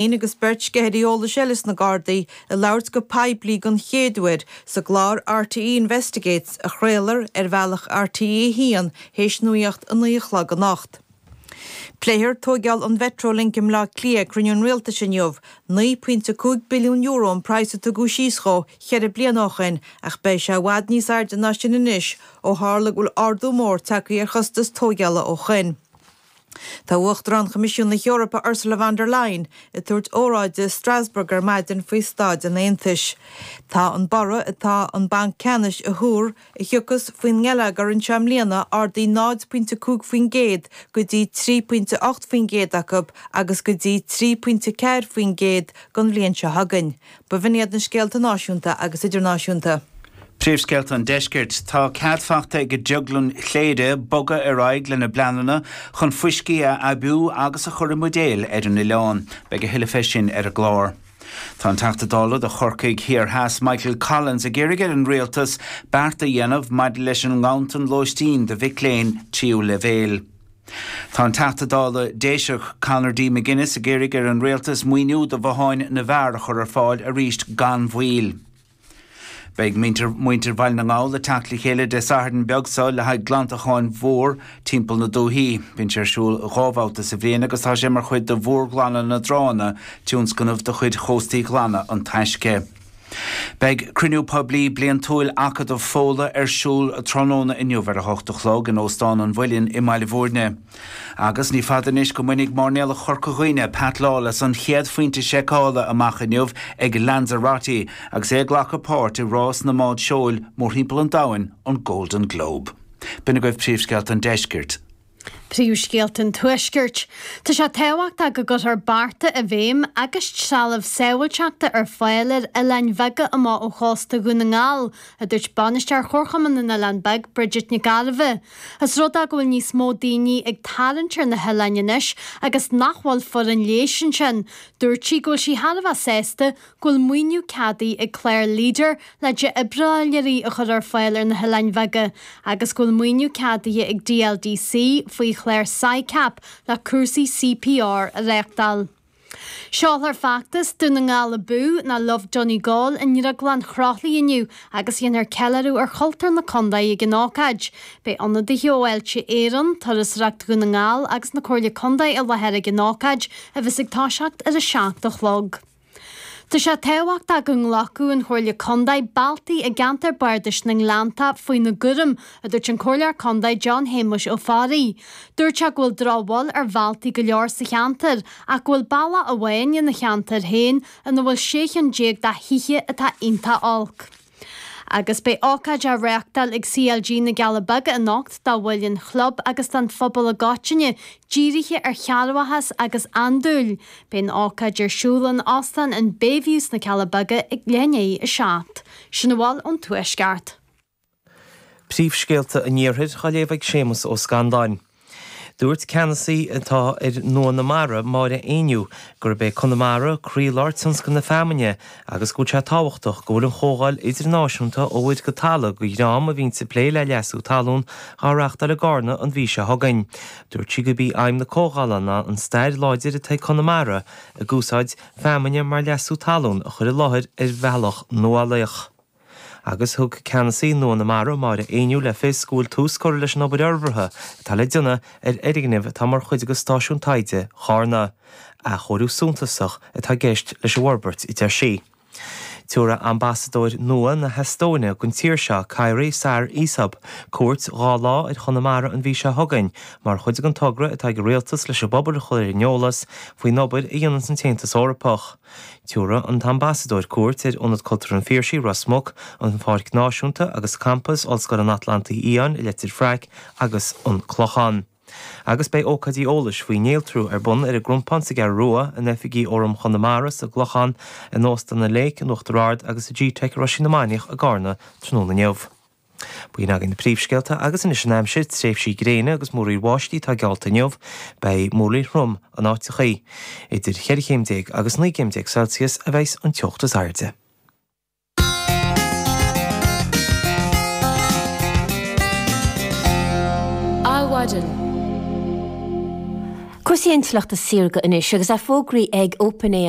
Bean agus beirt sceithirí eolais eile sna Gardaí ag labhairt go poiblí den chéad uair sa gclár RTÉ Investigates a chraolfar ar bhealach RTÉ 1 théis nuacht a naoi a chlog anocht. Pléifear tóigeáil an Mhetrolink i mBleá Cliath ag cruinniú an Rialtais inniu. €9.5 billiún an praghas a tóigeadh síos dhó cheithre bliana ó shin ach beidh sé i bhfad níos airde ná sin anois ó tharla go bhfuil ardú mór tagtha ar chostas tóigeála ó shin. Tá Uachtarán Choimisiún na hEorpa Ursula von der Leyen ag tabhairt óráide i Strasbourg ar maidin faoi staid an Aontais. Tá an borradh atá an Banc Ceannais a thuar a thiocfas faoin ngeilleagar anseo i mbliana ardaithe 0 pointe 5 faoin gcéad go dtí 3 pointe 8 faoin gcéad acu agus go dtí 3 pointe 4 faoin gcéad don bhliain seo chugainn. B'in iad na scéalta náisiúnta agus idirnáisiúnta. Príomhscéalta an Deiscirt. Tá cead faighte ag Drioglann Chléire bogadh ar aghaidh lena bpleananna chun fuiscí a aibiú agus a chur i mbuidéil ar an oileán. Beidh a thuilleadh fé sin ar an gclár. Tá an Teachta Dála do Chorcaigh Thiar Theas Michael Collins ag iarraidh ar an Rialtas beart a dhéanamh maidir leis an nganntan lóistín do mhic léinn tríú leibhéil. Tá an Teachta Dála Déiseach Conor D McGuinness ag iarraidh ar an Rialtas maoiniú do bhotháin na bhfear a chur ar fáil arís gan mhoill. Beidh muintir Bhaile na nGall ag teacht le chéile Dé Sathairn beag seo le haghaidh glantacháin mhór timpeall na dúthaí. Bíonn sé ar siúl dhá bhabhta sa bhliain agus tá sé mar chuid de Mhórghlanadh na dTránna, tionscnamh de chuid Chóstaí Glana an Taisce. Beidh Cruinniú Poiblí Bliantúil Acadamh Fódhla ar siúl tráthnóna inniu ar a hocht a chlog in Óstán an Mhuilinn i mBaile Mhúirne. Agus ní fada anois go mbainfidh máirnéalach Chorca Dhuibhne, Pat Lawless, an chéad phointe seiceála amach inniu ag Lanzarote agus é ag glacadh páirt i rás na mbád seoil mórthimpeall an domhain, an Golden Globe. B'in agaibh príomhscéalta an deiscirt. Príomhscéalta an Tuaiscirt. Tá sé tábhachtach go gcuirfear bearta i bhfeidhm agus trealamh sábháilteachta ar fáil ar oileáin bheaga amuigh ó chósta Dhún na nGall, a dúirt Bainisteoir Chomharchumann na nOileán Beag, Bridget Nic Gairbheith. ós rud é go bhfuil níos mó daoine ag tarraingt ar na hoileáin anois agus nach bhfuil foireann leighis ansin. Dúirt sí go bhfuil sí thar a bheith sásta go go bhfuil maoiniú ceadaithe ag clár leader le difhibrileoirí a chur ar fáil ar na hoileáin bheaga agus go bhfuil maoiniú ceadaithe ag DLDC faoi chlár Sicap le cúrsaí CPR a réachtáil. Seolfar feachtas Dún na nGall Abú ná Love Donegal i nDrioglann Chroithlí inniu agus déanfar ceiliúradh ar chultúr na contae ag an ócáid. Beidh ionadaithe ó Fháilte Éireann, Turasóireacht Dhún na nGall agus na Comhairle Contae i láthair ag an ócáid a bheas ag toiseacht ar 7 a chlog. Tá sé tábhachtach go nglacfadh an Chomhairle Contae bealtaí i gceantar bardais na nGleannta faoina gcúram, a dúirt an Comhairleoir Contae John Shéamuis Ó Fearraigh. Dúirt sé go bhfuil drochbhail ar bhealtaí go leor sa cheantar ach go bhfuil bealach amháin ina cheantar féin ina bhfuil sé chinn déag de thithe atá iontach olc. Agus beidh ócáid á reáchtáil ag CLG na gCealla Beaga anocht do bhaill an chlub agus don phobal i gcoitinne, dírithe ar chearrbhachas agus andúil. Beidh an ócáid ar siúl in Óstán an Bayview sna Cealla Beaga ag leath i ndiaidh a seacht. Sin a bhfuil ón Tuaisceart. Príomhscéalta an Iarthair á léamh ag Séamas Ó Scanláin. Dúirt ceannasaí atá ar Nua na Mara, Máire Éinniú, gurb é Conamara croílár tionscal na feamainne agus go bhfuil sé tábhachtach go bhfuil an chomhdháil idirnáisiúnta Ó Mhuir go Talamh go Greáin a bhíonns ag plé le leasú talún á reáchtáil i gCarna an mhí seo chugainn. Dúirt sí gurb í aidhm na comhdhála ná an stair láidir atá ag Conamara ag úsáid feamainne mar leasú talún a chur i láthair ar bhealach nuálaíoch. Agus thug ceannasaí Nua na Mara, Máire Éinniú, le fios go bhfuil tús curtha leis an obair fhorbartha atá le déanamh ar fhoirgneamh atá mar chuid de Stáisiún Taighde Charna. Athchóiriú suntasach atá i gceist leis an bhforbairt, a deir sí. Tabharfaidh ambasadóir nua na hEastóine don tír seo, Kairi Saar-Isop, cuairt dhá lá ar Chonamara an mhí seo chugainn mar chuid den togra atá ag an Rialtas leis an bpobal a chur ar an eolas faoin obair a dhéananns an tAontas Eorpach Tabharfaidh an tAmbasadóir cuairt ar Ionad Cultúrtha an Phiarsaigh, Ros Muc, an Pháirc Náisiúnta agus Campas Ollscoil an Atlantaigh Fhiáin i Leitir Fraic agus an Clochán. Agus beidh ócáidí eolais faoi néaltrú ar bun ar an gCrompán sa gCeathrú Rua, in oifigí Fhóram Chonamara sa gClochán, in Óstan an Lake in Uachtar Ard agus i gteic Roisín na Mainiach i gCarna tráthnóna inniu. B'in againn na príomhscéalta agus anois an aimsir, tréimhsí gréine agus múraíl bháistí atá geallta inniu. Beidh múraíl throm in áiteachaí. Idir cheithre chéim déag agus naoi gcéim déag Celsius a bheidhs an teocht is airde. Adhmhaidin. Cúrsaí intleachta saorga anois agus tá fógraithe ag OpenAI.